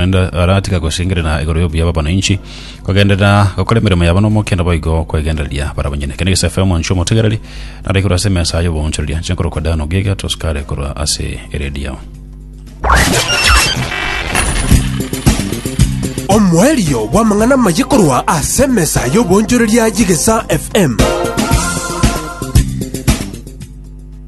Naende aratiga gosengerera igoro y'obuya bw'abananchi, kogenderera gokora emeremo yabo n'omokendo boigo kwegendereria bara banyene. Kende gese FM nchia omotegereri, nare korwa ase emesa y'oboonchoreria, nchia nkorokwa Diana Ogiga, tosukare korwa ase eredio. Omoerio bw'amang'ana amaye korwa ase emesa y'oboonchoreria y'Egesa FM.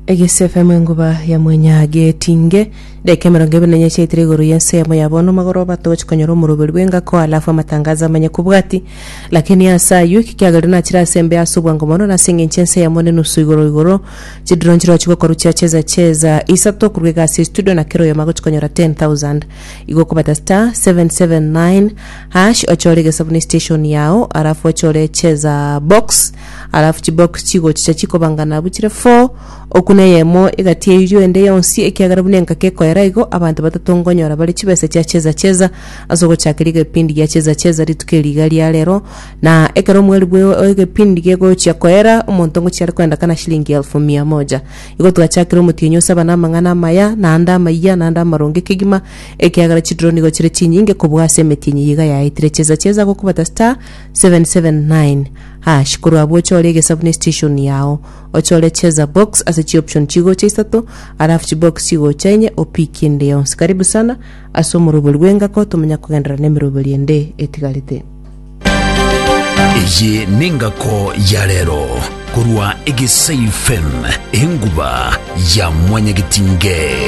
Egese FM enguba ya mwenya getinge Daika emerongo ebere na enyacha yaitire igoro y'ensemo ya bono magoroba togochi konyora omoroberi bw'engako alafu amatangazo amanye kobwati. Lakini ase ayio eki kiagerire nachire ase embe ase obwango mono nase engencho ense yamo nenusu igoro igoro. Chidrone chirochigwe korwa chia cheza cheza isato korwa iga ase estudio na kera oyomo agochi konyora 10,000. Igo okobata star 779 hash ochore egesabu ne station yao alafu ochore cheza box alafu chibox chigochicha chikobangana abwo chire four Oku neyemo egati y'eyio ende yonsi, ekiagera buna engaki ekoera igo, abanto batato nkonyora bare chibesa chia cheza-cheza ase ogochakeria egepindi gia cheza-cheza rituko eri iga ria rero, na ekero omweri bwe egepindi gegochia koera, omonto ngochiare koenda kana shilingi elfu mia moja. Igo twachakire omotienyi o saba na amang'ana amaya, na ande amayia, na ande amaronge kegima, ekiagera chidiro nigo chire chinyinge kobua ase emetienyi eye iga yaetire cheza-cheza gokobata *779#. Korwa abwo chore egesabu ne station yao. Ochore cheza box ase chi option chigocha isato alafu chi box chigocha enye opick ende yonsi. Karibu sana ase omorobori bw'engako tomanya kogenderera nemerobori ende etigarete. Eye nengako ya rero korwa Egesei fm enguba ya mwanyagetinge.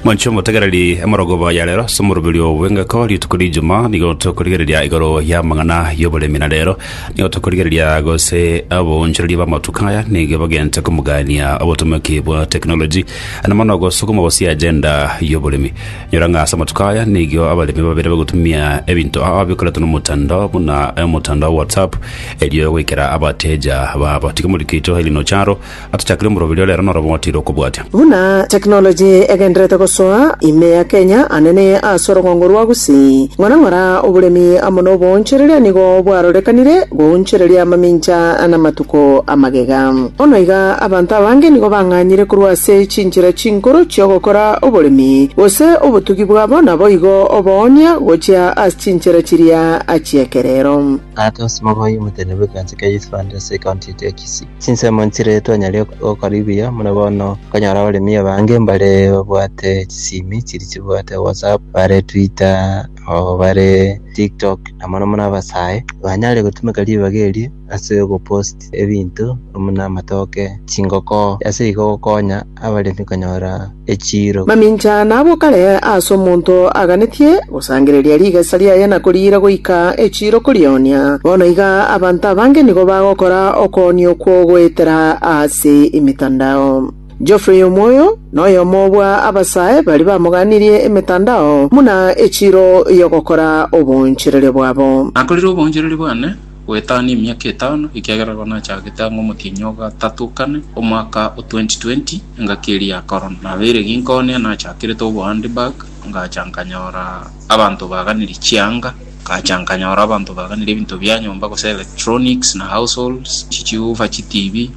Monche omotegereri, emorogoba ya rero ase omoroberio bw'engako, rituko ri'Ijumaa, nigo tokorigereria igoro y'amang'ana y'oboremi, na rero nigo tokorigereria gose aboonchoreria b'amatuko aya nigo bagente komogania obotomeki bwa technology, na mono gosukuma gose agenda y'oboremi. Nyora ng'a ase amatuko aya nigo abaremi babere bagotumia ebinto ao bikoretwe nomotandao buna omotandao wa WhatsApp erio goikera abateja babo. Tiga morikito Elinor Charo Atochakire omoroberi o rero norobe ogotiira okobwatia. Buna technology egenderete gosoa ime ya Kenya, anene ase orong'ongo rwa Gusii, ng'ora ng'ora oboremi amo noboonchereria nigo bwarorekanire goonchereria amamincha namatuko amagega. Bono iga abanto abange nigo bang'anyire korwa ase chinchera chinkoro chi'ogokora oboremi, gose obotugi bwabo naboigo oboonia gochia ase chinchera chiria chi'ekerero. Ate ase Mogoi omotenenebwe ekanisa kea Youth Fund ase ekaunti yaito ya Kisii. Chinsemo nchire twanyare gokaribia buna bono okonyora abaremi abange mbare babwate chisimi chiri chibwate whatsapp, bare twitter, oo bare tiktok na mono mono abasae banyare gotumeka ribaga eri ase ogopost ebinto buna amatoke, chingoko ase igo gokonya. abaremi konyora echiiro. Mamincha nabwo kare aase omonto aganetie gosangereria rigesa riaye na koriira goika echiiro korionia. Bono iga abanto abange nigo bagokora okoonia okwo goetera aase emetandao. Geoffrey omoyo noyomo bwa abasae baria bamoganirie emetandao buna echiiro y'ogokora oboonchereria bwabo. Nakorire oboonchereria bwane. goetania emiaka etano, ekiagera igo nachagete ang'e omotienyi o gatato kane, omwaka o 2020, engaki eria ya Corona. Nabeire ginkoonye, nachakerete obohandbag, ngacha nkanyora abanto baganire chianga, ngacha nkanyora abanto baganire ebinto bia nyomba gose electronics na households, chichiufa, chitibi,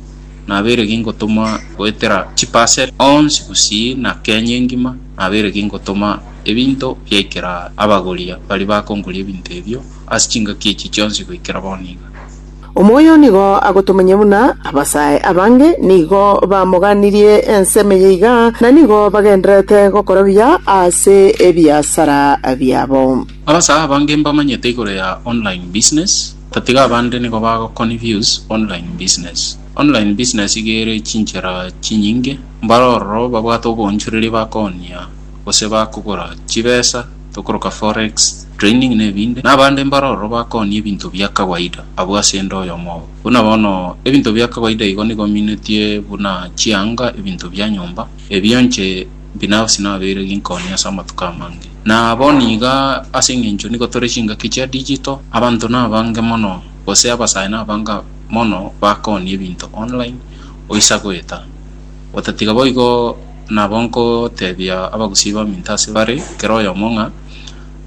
nabeire gingotomwa goetera chiparcel onsi gusii na Kenya engima, nabeire gingotoma ebinto biaikera abagori baria bakongoria ebinto ebio. ase chingaki echi chionsi goikera bono iga. Omoyo nigo agotomenye buna abasae abange nigo bamoganirie ensemo eye iga, na nigo bagendererete gokora buya ase ebiasara biabo. Abasae abange mbamanyete igoro ya online business, tatiga abande nigo bagoconfuse online business. Online business iga ere chinchera chinyinge, mbare ororo babwate oboonchoreria bakooonia gose bakogora chibesa, tokoroka forex training na ebinde, na abande mbare ororo bakooni ebinto bia kawaida abwo ase ende oyomo obo. Buna bono, ebinto bia kawaida igo nigo minetie buna chianga, ebinto bia nyomba, ebio inche binafsi nabeire ginkooni ase amatuko amange. Na bono iga, ase eng'encho nigo tore chingaki chia digital, abanto nabange mono, gose abasae nabange mono bakooni ebinto online, oisa goeta. Otatiga boigo nabo nkotebia abagusii baminto ase bare kera oyomo ng'a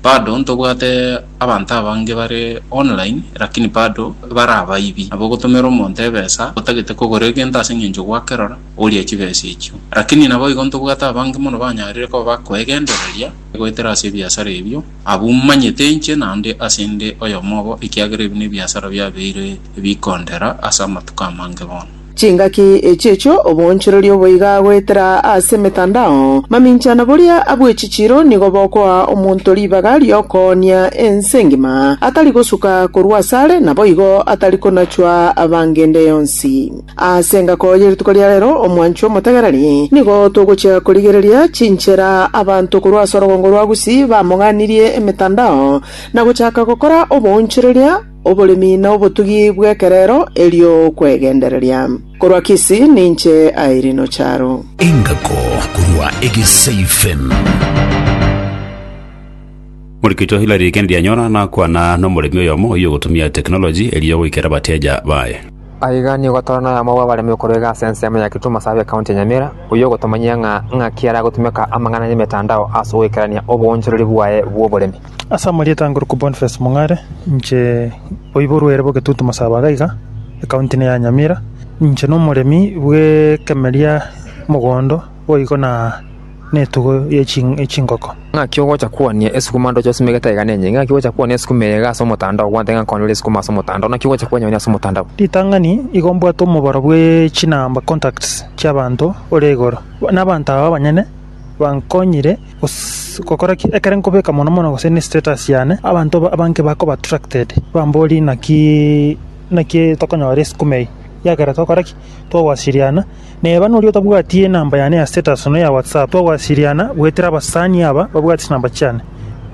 bado ntobwate abanto abange bare online lakini bado bare abaibi. Nabo ogotomera omonto ebesa otagete kogora egento ase engencho gwakerora orie chibesa echio. Lakini naboigo ntobwate abange mono banyarire koba bakoegendereria goetera ase ebiasara ebio abwo manyete inche naende ase inde oyomo obo ekiagera ebi nebiasara biabeire bikondera ase amatuko amange bono. Chingaki echi echio oboonchoreria oboiga goetera ase emetandao maminchana boria abw'echichiiro nigo bokoa omonto ribaga ri'okoonia ense engima, atari gosuka korwa asare, naboigo atari konachwa abangende yonsi. Ase engako ye rituko ria rero, omwanchwa omotegereri, nigo togochia korigereria chinchera abanto korwa ase orogongo rwa Gusii bamoganirie emetandao na gochaka gokora oboonchoreria, Oboremi na obotugi bw'ekerero, erio kwegendereria. Korwa Kisii ninche Irene Ocharo. Engako korwa Egeseifen. Morikicho Hillary Kendianyora nakwana nomoremi oyomo oyio ogotumia technology erio goikera abateja baye. Aiga nigo tore noyomo bw'abaremi okorwa egasi ense yamo ya Kitumo Survey County ya Nyamira, oyio ogotomanyia ng'a ng'aki aragotumeka amang'ana y'emetandao ase ogoikerania oboonchoreri bwaye bw'oboremi. Ase amarieta ange orokwa Boniface Mong'are, inche oiborwe ere bw'egetutu Masabaaga iga, ekaunti eye ya Nyamira, inche na omoremi bw'ekemeria, mogondo boigo na etugo ye chingoko. Ng'aki ogocha kwania esukuma ndoche osime egete iga nenye? Ng'aki ogocha kwania esukuma eye iga ase omotandao gwancha ng'a nkonye ore esukuma ase omotandao? Naki ogocha kwanyeonia ase omotandao? Ritang'ani igo mbwate omobaro bwe chinamba, contacts, chiabanto ore igoro. Na abanto aba abanyene bankonyire. gose gokora ki? Ekero nkobeka mono mono gose ne status yane, abanto abange bakoba attracted, bambori naki naki tokonyora esukuma eye, ekiagera togokora ki? Togowasiriana, na eba noria otabwati enamba yane ya status nonya ya WhatsApp, togowasiriana goetera abasani aba babwate chinamba chiane,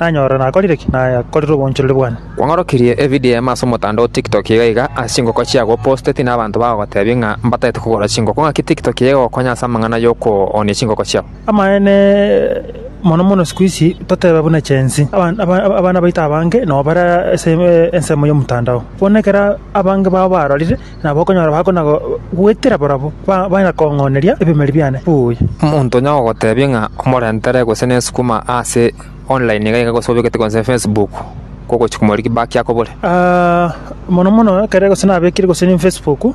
nanyora nakorire ki? Nakorire oboonchoreri bwane. Kwang'orokirie evideo yaima ase omotandao TikTok iga iga ase chingoko chiago oposteti na abanto bagogotebia ng'a mbatagete kogora chingoko. Ng'aki TikTok iga egokonya ase amang'ana y'okoonia chingoko chiao? Amaene, mono mono isiko isi toteba buna chensi, aban- aba- aba- abana baito abange nabo bare ase eh, ensemo y'omotandao. Bono ekero abange bao barorire, nabo okonyora bakona go- goetera barabwo, ba- baenda kong'oneria ebimeri biane buya. Omonto onye agogotebia ng'a omorentere gose nesukuma ase online iga iga gose obekete gose Facebook, kogochi komorigia back akobore. Ah, mono mono ekere gose nabekire gose ne Facebook,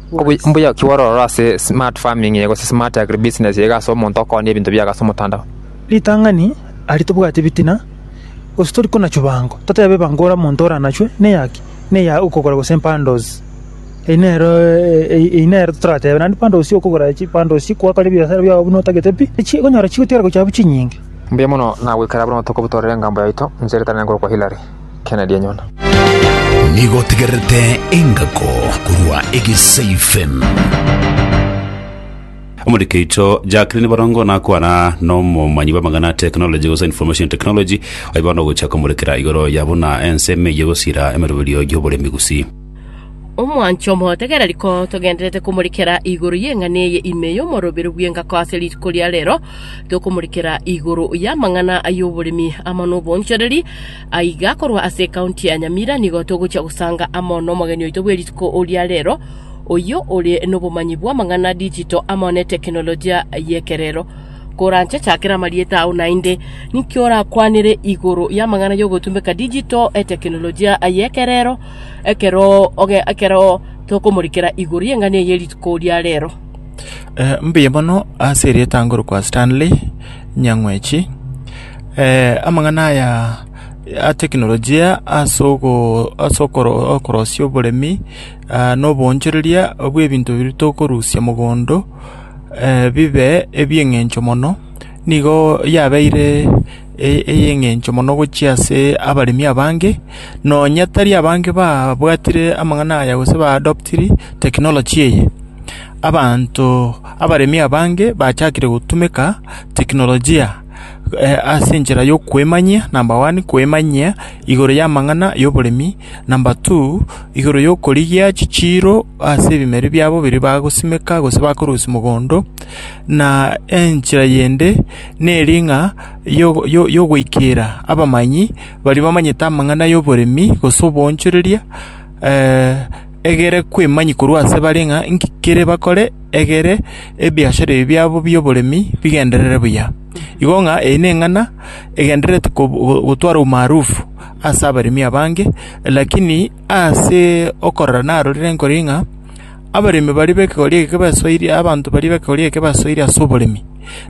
Omboyoki bw'ororo ase smart farming iga gose smart agribusiness iga ase omonto okoorania ebinto biago ase omotandao. Ritang'ani aria tobwate ebitina, gose tori konachuwa bango, totebe bango ore omonto oranachwe na eyaki? Na eya okogora gose bundles. Eyio nero eyio nero toratebe naende bundles ya okogora chi bundles chi kwakora ebiasara biago buna otagete pi, echi okonyora chigotigara gochia abwo chinyinge. Mbuya mono, nagoikera buna obotuko botore engambo yaito, inche Ritang'ani ngorokwa Hilary. kena rianyona. Nigo otegererete engako korwa egesaifem. Omoriki oito Jacqueline Borongo nakwana nomomanyi bw'amang'ana technology gose information technology aye bono ogochia komorekera igoro ya buna ensemo eye gosira emeroberio y'oboremi gusii Omwancho omogotegera riko togendererete komorikera igoro y'eng'ana eye ime y'omorobero bw'engako ase rituko ria rero, tokomorikera igoro y'amang'ana ay'oboremi amo n'obonchoreri. Aiga korwa ase ekaunti ya Nyamira nigo togochia gosanga amo nomogeni oito bwe rituko ria rero, oyio ore nobomanyi bw'amang'ana digital amo ne tekenolojia y'ekerero. Koranche chakera amarieta ao naende, ninki orakwanere igoro y'amang'ana y'ogotumbeka digital, etekenolojia y'ekerero, ekero oge- ekero tokomorikera igoro y'eng'ana eye ye rituko ria reero. Eh, mbuya mono ase erieta ngorokwa Stanley Nyang'wechi. Eh, amang'ana aya a teknolojia ase ogo ase okoro okorosia oboremi ah, na oboonchoreria bw'ebinto biria tokorusia mogondo eh, bibe ebi'eng'encho mono, nigo yabeire ey'engencho mono gochia ase abaremi abange, nonya tari abange babwatire amang'ana aya gose ba adoptiri technology eye. Abanto abaremi abange bachakire gotumeka teknolojia ase enchera yokwemanyia, number one, kwemanyia igoro y'amang'ana y'oboremi. Number two, igoro y'okorigia chichiiro ase ebimeri biabo biria bagosimeka gose bakorusia mogondo, na enchera yende neri ng'a yogoikera abamanyi baria bamanyete amang'ana y'oboremi gose oboonchoreria egere kwemanyia korwa ase bare ng'a nki kere bakore egere ebiachara ebi biabo bi'oboremi bigenderere buya. Igo ng'a eye neng'ana egendererete gotwara umaarufu. ase abaremi abange, lakini ase okorora narorire nkore ng'a abaremi baria b'ekegori eke basoiri, abanto baria b'ekegori eke basoiri ase oboremi.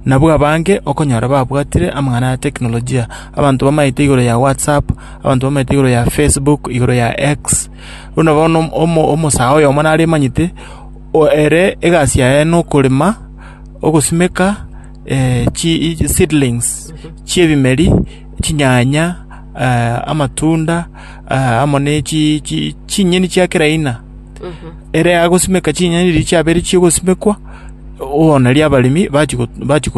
Nabwo abange okonyora babwatire amang'ana ya teknolojia, abanto bamaete igoro ya WhatsApp, abanto bamaete igoro ya Facebook, igoro ya X. Buna bono omo omosae oyomo naremanyete, o ere egasi yaye nokorema, ogosimeka. chiseedlings chi'ebimeri, chinyanya, amatunda, amo ne chinyeni chia kera aina. Ere agosimeka chinyeni riria chiabeire chi'ogosimekwa, bono erio abaremi bachia bachia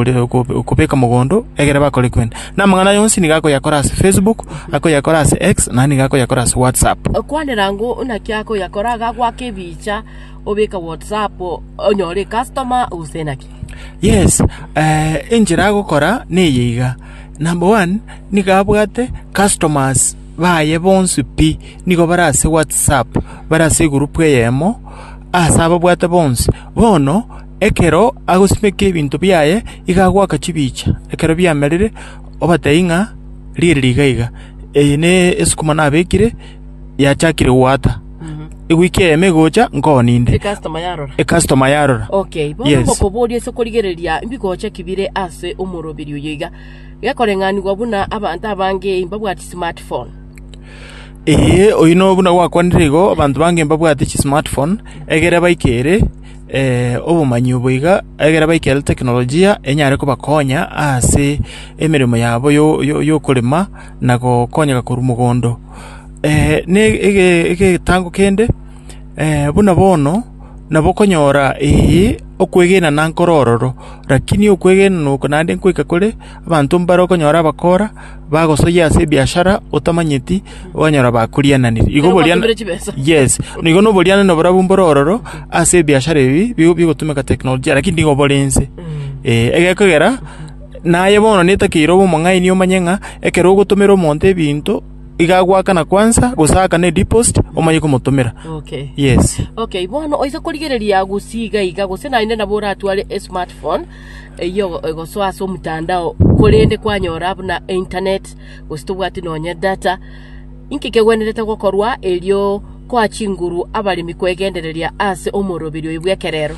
kobeka mogondo, ekero bakore kwene. Na amang'ana aria onsi nigo akoyakora ase Facebook, akoyakora ase X, naende nigo akoyakora ase WhatsApp. Kwanera ngoo naki akoyakora, gagoaka ebicha, obeke WhatsApp, onyore customer, gose naki. Yes, enchera agokora neye iga, number one, nigo abwate customers baye bonsi pi, nigo bare ase WhatsApp, bare ase egurupu eyemo, ase ababwate bonsi. Bono, ekero agosimeka ebinto biaye, iga agoaka chibicha, ekero biamerire, obatebia ng'a riri riga iga, eye na esukuma nabekire. yachakire goata, egoika eyemo egocha nkoo ninde. Ecastoma yarora. Ecastoma yarora. Okay, bono Yes. ngokoboria ase okorigereria mbigocha ki bire ase omoroberi oyo iga, gekoreng'anigwa buna abanto abange mbabwati smart phone. Ee, oyio no buna gwakwanire igo, abanto bange mbabwate chismart phone, egere baike ere eh, obomanyi obo iga, egere baike ere teknolojia enyare kobakonya ase emeremo yabo yo- yo- yokorema. na gokonyeka korwa mogondo, ne egetango kende, buna bono nabo okonyora ee okwegena na nkoro ororo, rakini okwegena na oko naende nkoika kore, abanto mbare okonyora abakora, bagosoyia ase ebiashara otamanyeti, okonyora bakoriananire. Igo boriana- Ekero mwatumire chibesa. yes, na igo na oborianania borobwo mbore ororo, ase ebiashara ebi, bigo bigotumeka teknolojia, rakini nigo bore inse, eh, egekogera. Na aye bono netakeire obe omong'aini omanye ng'a ekero ogotomera omonto ebinto, iga agoakana kwansa, gose aakane ediposit, omanye komotomera. Yes. Okay, bono oise korigereria gusii iga iga, gose naende nabo oratware esmart phone eyio egosoa ase omotandao, korende kwanyora buna einternet, gose tobwati nonye data, inki kegwenerete gokorwa erio koa chinguru abaremi kwegendereria ase omoroberio oyo bw'ekerero?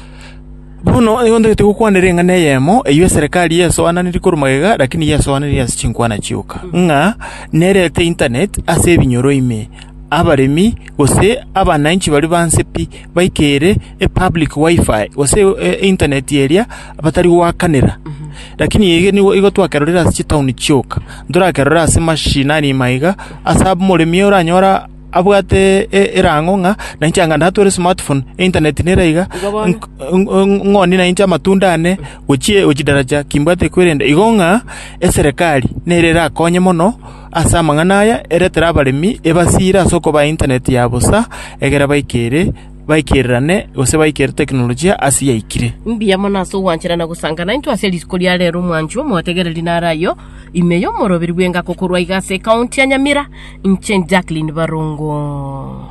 Bono nigo ntagete gokwanera eng'ana eyemo, eyio eserekari yaesoananetie korwa magega, lakini yaesoananetie ase chinkwana chioka, ng'a nerete internet ase ebinyoro ime, abaremi, gose abananchi baria banse pi, baike ere epublic WiFi, gose internet eria batari goakanera. Lakini ege nigo igo twakerorire ase chitown chioka, ntorakerore ase mashinani maiga, ase abamoremi oranyora. abwate erango ng'a nainche anga natware smartphone, internet nere aiga, nk- ng- ng- ng'oni nainche amatunda aane gochie gochidaraja kimbwate kwerenda. Igo ng'a eserekari nere erakonye mono ase amang'ana aya, eretere abaremi ebasire ase okoba internet ya bosa, egere baikere baikererane gose baikere teknolojia ase yaikire. Mbuya mono ase ogwanchera na gosangana intwe ase risiko ria rero omwanchwa omotegereri nare ayo ime y'omoroberi bw'engako korwa iga ase ekaunti ya Nyamira Inche Jacqueline Barongo.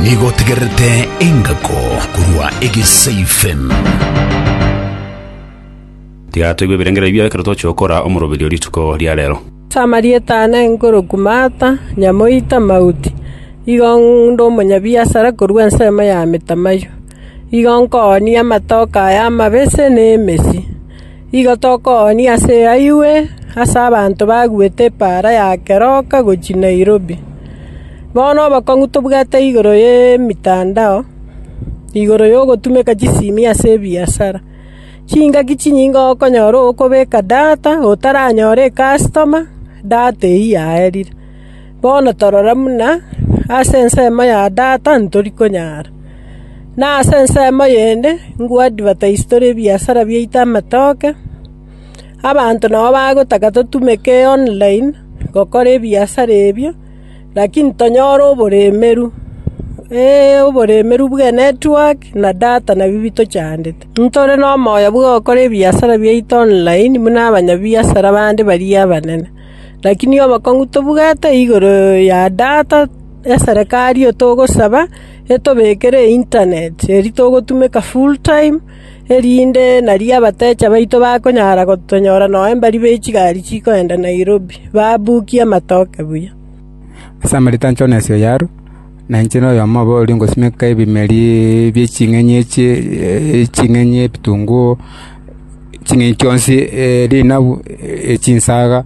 Nigo otegererete engako korwa egesaifen. Tiga toigwe ebirengererio bia ekero toche gokora omoroberio rituko ria rero. Ase amarieta aa nenkoroku Martha, Nyamoita, Mauti, igo nde omonyabiasara korwa ensemo ya Amitamayo. Igo nkoonia amatoke aya amabese ne emesi. Igo tokoonia ase eayuwe ase abanto baguete epaara ya keroka gochia Nairobi. Bono obokong'u tobwate igoro y'emetandao, igoro y'ogotumeka chisimi ase ebiasara. Chingaki chinyinge okonyora okobeka data otaranyore ekasitoma, data eyio yaerire. Bono torora buna ase ensemo ya Tata ntori konyara, na ase ensemo eyende ingoadvataise tore ebiasara biaito amatoke. Abanto nabo bagotaka totumeke online gokora ebiasara ebio, lakini tonyore oboremeru. Ee, oboremeru bw'enetwork na data nabio bitochandete. Ntore nomoyo bw'ogokora ebiasara biaito online buna abanyabiasara bande baria abanene. Lakini obokong'u tobugate igoro ya data eserekari oyo togosaba etobekere eintaneti, erio togotumeka full time, erinde nario abatecha baito bakonyara gotonyora nonya mbari be chigari chikoenda Nairobi, babukie amatoke buya. Ase amarita a Jonasi oyo arue, na inche noyomo obo oria ngosimeka ebimeri bie ching'enyi echie ching'enyi ebitunguu, ching'enyi chionsi rinabu, chinsaga,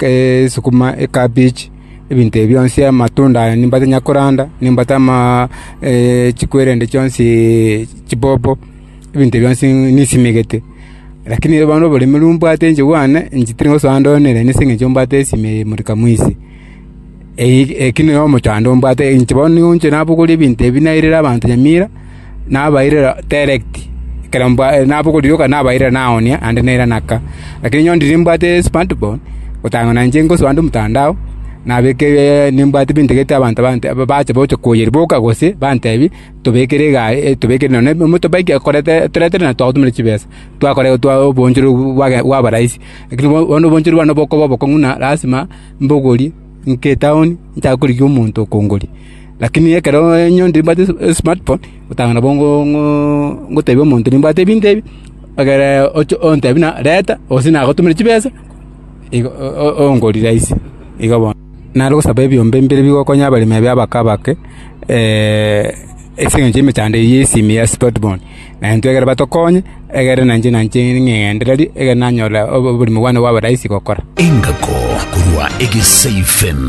esukuma, ekabichi, ebinto ebio bionsi amatunda aya nigo ntanyara koranda, nimbate chikwere chionsi chibobo. ebinto ebio bionsi nisimegete. Lakini bono oboremu obo mbwate inche bwane, inche tiri gosoa ande one nere ase eng'encho mbwate esime eye imorika mwisi. Eye- eki nere omochando ombwate inche bono nigo inche nabogoria ebinto ebi nairire abanto nyamira, nabairera direct, ekero mbwa- nabogoria yoka nabairera naoonia naende naira naka. Lakini nyo ndiri nimbwate esmart phone, otang'ana na inche ngosoa ande omotandao, nabeke nimbwate ebintagete abanto bante- bache gocha koyeria boka gose, bantebi. tobekere egari, tobekere nonya ne emotobike toretere nonya twagotumera chibesa, twakora obonchorori bw'age bwaba rahisi. Lakini bono bono obonchorori bwane bokoba obokong'u na lasima mbogori nke etaoni nchake korigia omonto okongoria. Lakini ekero nyore mbwate esi esmart phone, otanga nabo ngo ngo ngotebia omonto nimbwate ebinto ebi, egere oche ontebie buna reta gose nagotumere chibesa igo o- o- ongori rahisi igo bono. Nare gosaba ebiombe mbire bigokonya abaremi abio abake abake, ase engencho y'emechando eyio y'esimi ya Splotbourne. Na intwe ekero batokonye, egere na inche nanche ning'engerendererie, egere nanyore oboremi bwane bwabe rahisi gokora. Engako korwa Egesaifem.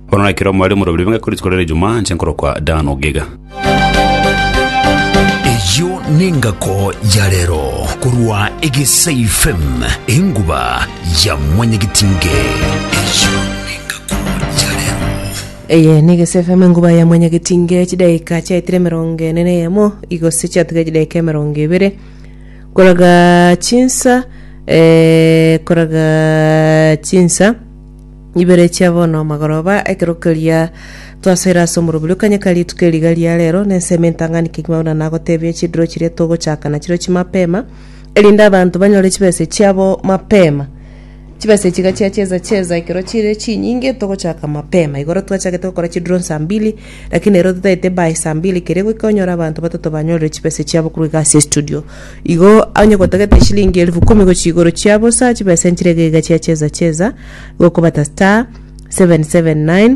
Bono na ekero mware omoroberi bw'engaki korisia korende Ijumaa, inche nkorokwa Dan Ogega. Eyio nengako ya rero korwa Egesai FM enguba ya mwanyagitinge. Eyio nengako ya rero. Eye ni Gese FM enguba ya mwanyagetinge chidaika chiaetire emerongo ene na eyemo igose chiatiga chidaika emerongo ebere koraga chinsa eh, koraga chinsa ibere chia bono amagoroba, ekero keria twasoire ase omorobori o Kanyeka rituko eri iga ria rero, na ensemo entang'ani kegima buna nagotebia, chidiro chiria togochaka nachirio chimapema, erinde abanto banyore chibesa echiabo mapema. Chibesa echi iga chiacheza cheza ekero chire chinyinge togochaka mapema. Igoro twachagete gokora chidiro saa mbili. Lakini ero totaete by saa mbili keria goika onyore abanto batato banyorire chibesa chiabo korwa egasi ya studio. Igo onye gotagete eshilingi elfu kumi gochia igoro chia bosa chibesa enchire iga iga chia cheza cheza igo okobata star 779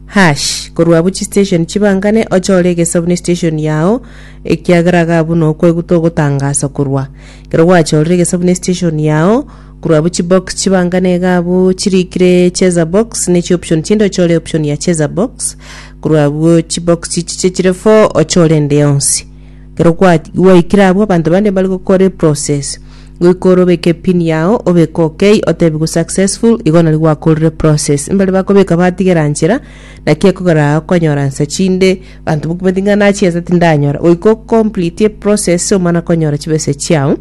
hash korwa abwo chistation chibangane ochore egesabu ne station yao ekiagera iga abwo nokweguta ogotangasa korwa ekero gwachorire egesabu ne station yao Korwa abwo chibox chibanga na egabu chirikire cheza box ne chioption chinde ochore option ya cheza box. Korwa abwo chibox chiche chire four ochore ende yonsi. Kero kwa gwaikire abwo abanto bande mbare gokora eprocess. Goika ore obeke pin yao obeke okay otebigwe successful igo nari gwakorire process. Mbare bakobeka batigera nchera naki ekogera aa okonyora nsa chinde abanto bakobwate ng'a nachiesa tindanyora. Goika o complete eprocess omana konyora chibesa chiao.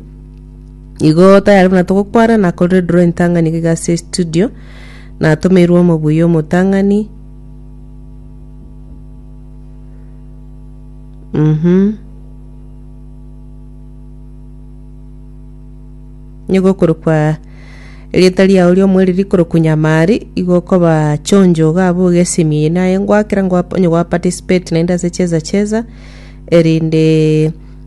Igo tayari buna togokwana nakorire draw entang'ani iga ase studio natomeirwe omobuya omotang'ani mhm nigo okorokwa erieta riao riomweri rikorokwa nyamari igo okoba chonjo iga abwo iga esemi eye naye ngwakera ngwa- onye gwaparticipate naende ase cheza cheza erinde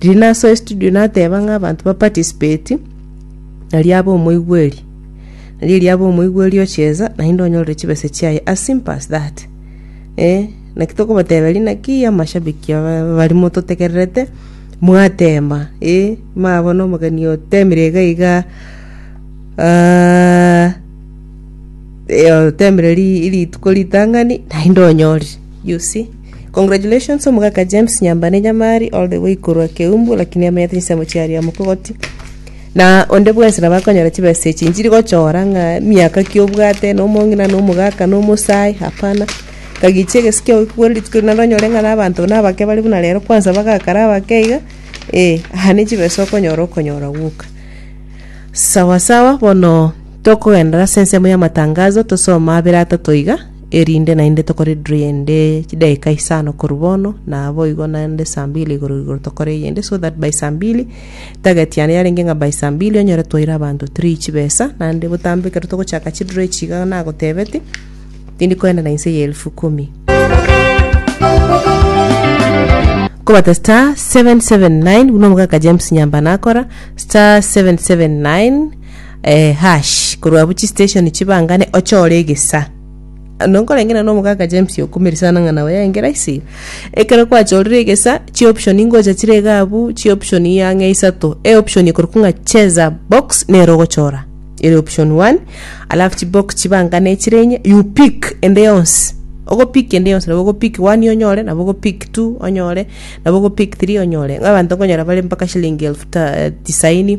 Riria nasoa estudio nateba ng'a abanto ba participate, nario abe omoigweri. Nario erio abe omoigweri ocheza, naende onyorere chibesa chiaye as simple as that. Eh, naki tokobateberia naki amashabiki aba bari mototegererete, mwatema, eh, mwabona omogeni otemire iga iga, ah, eh, otemire ri- rituko ritang'ani, naende onyorire. You see? Congratulations omogaka James Nyambane Nyamari all the way korwa Keumbu lakini amenyete chinsemo chia Riamu Kogoti na onde bwensi nabo akonyora chibesa echi nchiri gochora ng'a miaka ki obwate na omong'ina na omogaka na omosae hapana kagichie egesi kiagokigwera rituko eri naende onyore ng'a na abanto na abake bare buna rero kwanza bagakara abake iga eh aha ne chibesa okonyora okonyora gwoka. Sawa sawa bono tokogenderera ase ensemo y'amatangazo tosome abere atato iga. erinde naende tokore drill ende chidaeka isano korwa bono, na boigo naende saa mbili igoro igoro tokore eyende so that by saa mbili target yane yarenge ng'a by saa mbili onyore twaire abanto three chibesa, naende botambe ekero togochaka chidrill echi iga nagotebetie, tindi koenda na inse ya elfu kumi. Kobata star seven seven nine buna omogaka James Nyambana akora, star seven seven nine, Hash, korwa abwo chistation chibangane ochore egesa. Nonkoreng'ina na omogaka James Okumiri sana ng'a nao yaenge rahisi. Ekero kwachorire egesa, chioption ingocha chire iga abwo, chioption ang'e isato. Eoption ekorokwa ng'a cheza box nere ogochora, ere option one, alafu chibox chibangane echire enye, you pick ende yonsi. Ogopick ende yonsi, nabo ogopick one onyore, nabo ogopick two onyore, nabo ogopick three onyore. Ng'a abanto nkonyora bare mpaka shillingi elfu ta- tisaini.